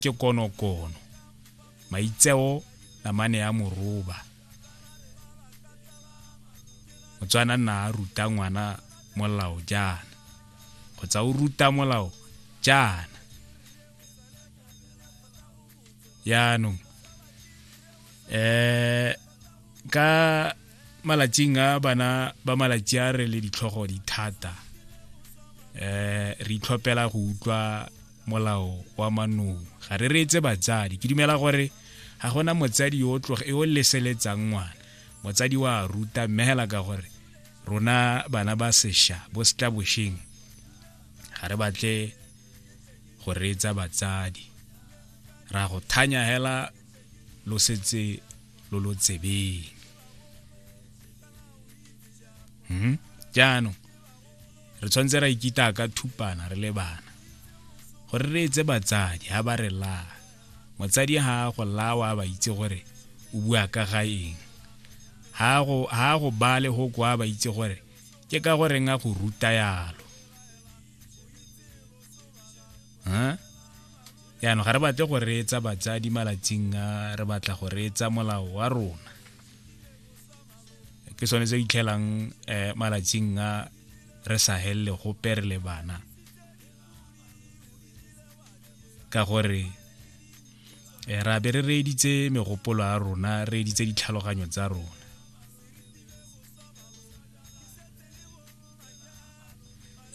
ke konokono maitseo namane ya moroba motswana nna a ruta ngwana molao jaana kgotsa o ruta molao jaana yaanong um ka malatsing a bana ba malatsi a re le ditlhogo di thata um re itlhopela go utlwa molao wa manong ga re reetse batsadi ke dumela gore ga gona motsadi yo o leseletsang ngwana motsadi wa ruta mme hela ka gore rona bana ba sesha bo setla bosheng ga re batle go reetsa batsadi ra go thanya hela lo setse lo lo tsebeng hmm? jaanong re tshwanetse ra ikita ka thupana re le bana gore re etse batsadi ha ba re laa motsadi ha a go lawa a ba itse gore o bua ka ga eng ha a go ba le go kwa ba itse gore ke ka gore nga go ruta yalo yaanong ga re batle go reetsa batsadi malatsing a re batla go reetsa molao wa rona ke sone se itlhelang um eh, malatsing a re sa helele gope re le bana ka gore eh, ra be re reeditse megopolo a rona re editse ditlhaloganyo tsa rona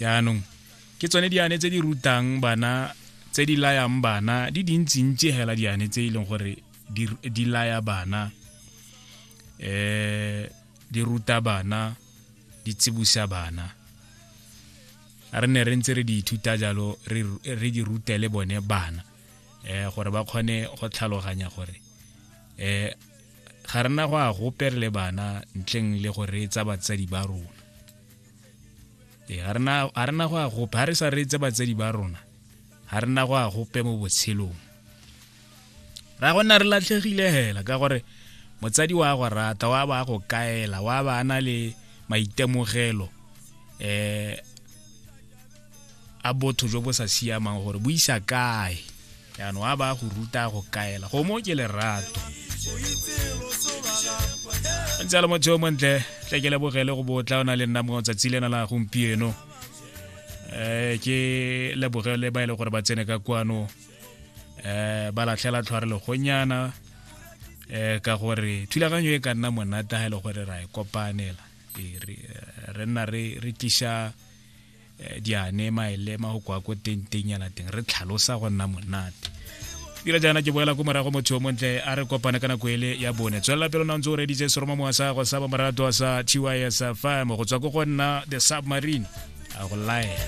jaanong ke tsone diane tse di rutang bana tse di layang bana di dintsintsi hela diane tse e leng gore di, di laya bana eh di ruta bana di tsibusa bana re ne re ntse re di ithuta jalo re di rute le bone bana eh gore ba kgone go tlhaloganya gore eh ga rena go a gope le bana ntleng le go reetsa batsadi ba rona e ga rena go a gope ga re sa reetse batsadi ba rona ga rena go a gope mo botshelong ra go nna re latlhegile hela ka gore motsadi wa go rata wa ba go kaela wa ba na le maitemogelo eh a botho jo bo sa siamang gore bo isa kae jaanong wa ba go ruta go kaela go mo ke lerato ntse le motho yo montle tle ke lebogele go botla o na le nna mo tsatsi lena la gompieno um ke lebogele ba e le gore ba tsene ka kwano eh ba latlhela tlhware legonyana eh ka gore thulaganyo e ka nna monata ha e le gore ra e kopanela e re nna re re tlisha eh, diane maelema go kwa ko teng teng yana teng re tlhalosa go nna monate dira jaana ke boela ko morago motho o montle a re kopane ka nako ele ya bone tswelela pelo na ntse o reditse seroma mowa sa go sa ba morato sa tys fm go tswa ko go nna the submarine a go laela